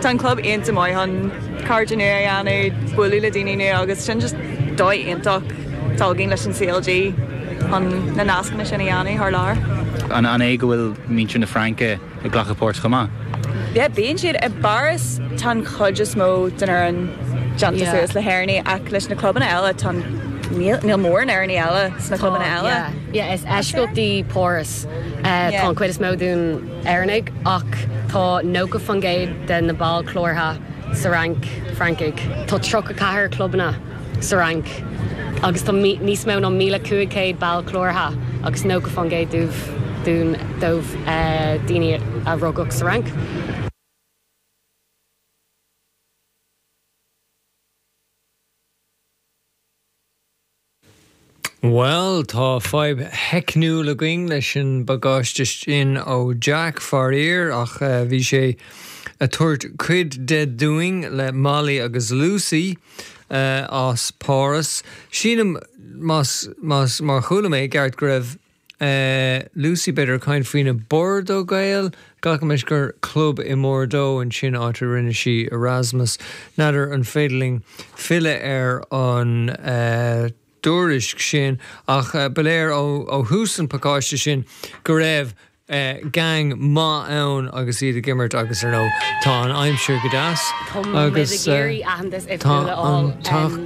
Tá an club iontach maith chun cairde nua a dhéanamh, bualadh le daoine nua agus sin just dóigh iontach atá againn leis an CLG chun na nascanna sin a dhéanamh thar lear. An é go bhfuil muintir na Fraince ag glacadh páirt chomh maith? Yeah, bíonn siad. I bPáras tá an chuid is mó den fhoireann déanta suas le hÉireannaigh ach leis na clubanna eile tá, níl, níl mórán Éireannaigh eile sna clubanna eile. Yeah, yeah, is eisceacht í Páras, tá an chuid is mó den. Éireannaigh, ach tá 90% de na baill cláraithe sa Fhrainc, Francaigh. Tá 34 clubanna sa Fhrainc agus tá níos mó ná 1,500 ball cláraithe agus 90% dóibh daoine a rugadh sa Fhrainc. Bhuel, tá fadhb theicniúil againn leis an bpacáiste sin ó Jack, faraor, ach bhí sé a' tabhairt cuid de dúinn le Molly agus Lucy as Páras. Sílim, más, más, má chuala mé i gceart go raibh. Lucy, B'fhéidir ag caint faoi na Bordeaux Gaels. Glacaimid gur club i mBordeaux ansin, áit a rinne sí Erasmus. N'fheadar an féidir linn filleadh ar an dtuairisc sin ach ba léir ó thús an pacáiste sin go raibh geaing maith ann agus iad ag imirt agus ar ndóigh tá an aimsir go deas agus.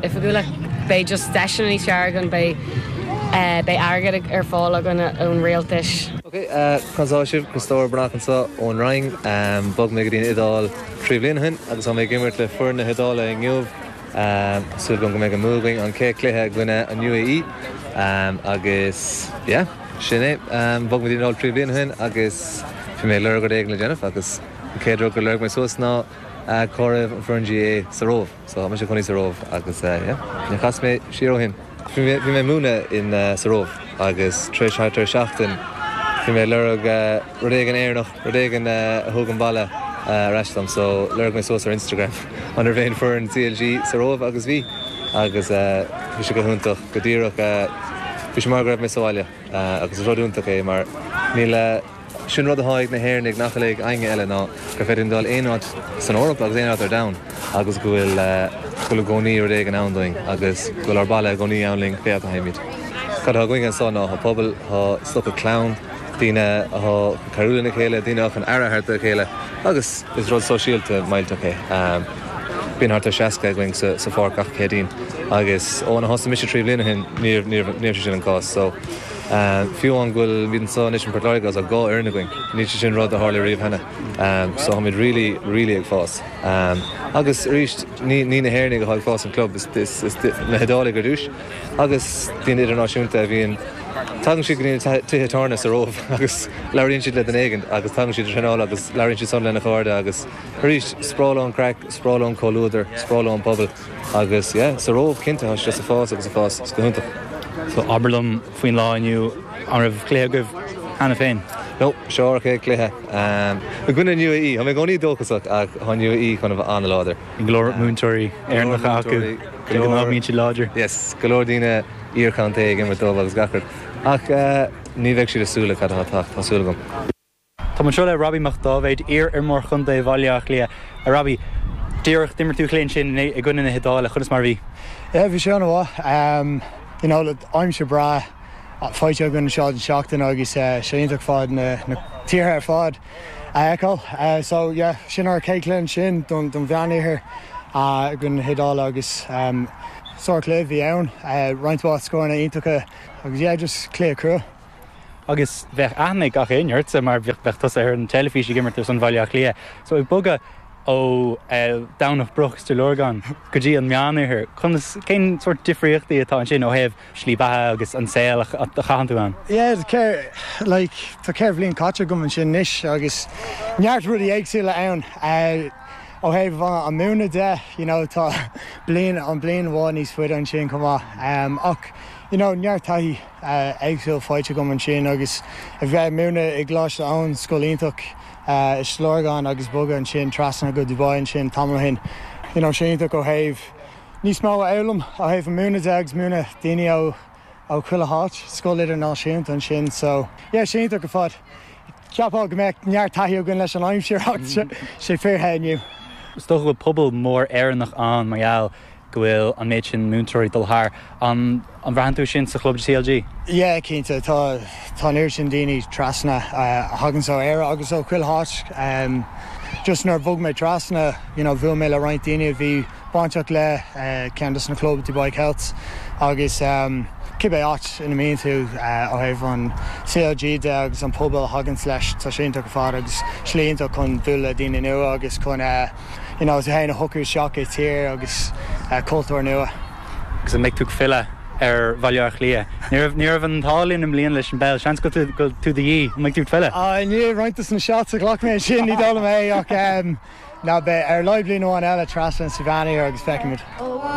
oifigiúla. Beidh just deiseanna níos fearr againn, beidh, beidh airgead ar fáil againn ón rialtas. Ok, conas tá sibh? Críostóir Breathnach anseo ón Róimh. Bhog mé go dtí an Iodáil trí bhliain ó shin agus tá mé ag imirt le foireann na hIodáile inniu. Súil agam go mbeidh an bua againn an chéad cluiche i gcoinne an UAE agus yeah, sin é. Bhog mé go dtí an Iodáil trí bhliain ó shin agus bhí mé ag lorg rud éigin le déanamh agus an chéad rud gur lorg mé suas ná cá raibh an foireann GAA sa Róimh. So, tá mé i mo chónaí sa Róimh agus yeah, níor chas mé siar ó shin. Bhí mé ag múineadh in, sa Róimh agus tar éis, thart ar seachtain, bhí mé ag lorg rud éigin Éireannach, rud éigin a thug an baile ar ais dom so lorg mé suas ar Instagram an raibh aon foireann CLG sa Róimh agus bhí agus bhí sé go hiontach, go díreach, bhí sé mar go raibh mé sa bhaile agus is rud iontach é mar níl. Sin rud atá ag na hÉireannaigh nach bhfuil ag éinne eile, ná gur féidir linn dul aon áit san Eoraip agus aon áit ar domhan agus go bhfuil i gcónaí rud éigin ann dúinn agus go bhfuil ár bhaile i gcónaí ann linn, pé áit a théimid. Cad atá againn anseo ná pobal, tá sé cosúil le clann, daoine atá chun cabhrú lena chéile, daoine atá chun aire a thabhairt dá chéile agus is rud sóisialta millteach é. Bíonn thart ar 60 againn sa pháirc gach Céadaoin agus óna thosaigh mise trí bhliain ó shin ní raibh sé sin an cás. Fiú amháin go bhfuil, muid anseo anois i bPort Láirge agus dhá fhoireann againn, níl sé sin rud a tharla riamh cheana, so táimid really, really ag fás. Agus arís, ní ní na hÉireannaigh atá ag fás an club, is iad na hIodálaigh ar dtús, agus daoine idirnáisiúnta a bhíonn, tagann siad go dtí na tithe tábhairne sa Róimh agus labhraíonn siad le duine éigin, agus tagann siad ag traenáil agus labhraíonn siadsan lena gcairde, agus arís, is breá leo an craic, is breá leo an comhluadar, is breá leo an pobal. Agus yeah, sa Róimh, cinnte, tá sé ag fás, agus ag fás go hiontach. So, abair liom faoin lá inniu, an raibh cluiche agaibh cheana féin? No, seo ár chéad cluiche i gcoinne an UAE. Tá mé i gcónaí dóchasach, ach tá an UAE chun a bheith an-láidir. Go leor múinteoirí Éireannacha acu, so, tá siad láidir? Yes, go leor daoine iar-chontae ag imirt dóibh agus gach rud, ach ní bheidh siad ag súil le cad atá ag teacht, tá súil agam. Táim anseo le Robbie Mac Dáibhéid, iar-iomróir chontae Bhaile Átha Cliath. A Robbie, díreach d'imir tú cluiche ansin i gcoinne na hIodáile, conas mar a bhí? Yeah, bhí sé an-mhaith. You know, aimsir breá faighte againn anseo don seachtain agus sé iontach ar fad na tíortha ar fad a fheiceáil. So, yeah, sin ár chéad chluiche ansin don Mheánoirthear i gcoinne na hIodáile agus sár-chluiche a bhí ann, roinnt mhaith scóranna iontacha agus, yeah, just cluiche crua. Agus bheadh aithne ag gach éinne ortsa mar bheadh tusa ar an teilifís ag imirt ar son Bhaile Átha Cliath. So ag bogadh ó Dhomhnach Broc is Stigh Lorgan go dtí an Meánoirthear, conas, cén sórt difríochtaí atá ansin ó thaobh slí beatha agus an saol a chaitheann tú ann? Yeah, ceithre, like, tá ceithre bhliain caite agam ansin anois agus neart rudaí éagsúla ann. Ó thaobh an múineadh de, you know, tá bliain, an bliain amháin níos faide ansin chomh maith. Ach, you know, neart taithí. éagsúil faighte agam ansin agus a bheith ag múineadh i gColáiste Eoin, scoil iontach i Stigh Lorgan agus bogadh ansin trasna go Dubai ansin tamall ó shin. You know, sé iontach ó thaobh níos mó a fhoghlaim ó thaobh an múineadh de agus múineadh daoine ó ó chuile háit, scoil idirnáisiúnta ansin so, yeah, sé iontach ar fad. Cheapfá go mbeadh neart taithí againn leis an aimsir ach sé fíor the inniu. Is dócha go bhfuil pobal mór Éireannach ann mar gheall go bhfuil an méid sin múinteoirí ag dul thar ann, an mbraitheann tú é sin sa chlub CLG? Yeah, cinnte, tá, tá an oiread sin daoine trasna a thaganns ó Éire agus ó chuile háit. Just nuair a bhog mé trasna, you know, bhuail mé le roinnt daoine a bhí bainteach le ceann dos na club, Dubai Celts, agus cibé áit ina mbíonn tú ó thaobh an CLG de agus an pobal a thaganns leis, tá sé iontach ar fad agus slí iontach chun bualadh le daoine nua agus chun eh, iad féin a shocrú isteach i tír agus cultúr nua. Agus an mbeidh tú ag filleadh ar Bhaile Átha Cliath? Ní raibh an t-ádh linn i mbliana leis an bpeil. Seans go bhfuil tú de dhíth. An mbeidh tú ag filleadh? I ndiaidh roinnt de na shots a ghlac mé ansin, ní dóigh liom é. Ach, beidh. Ar a laghad bliain amháin eile, trasna ansin sa Mheánoirthear agus feicfimid.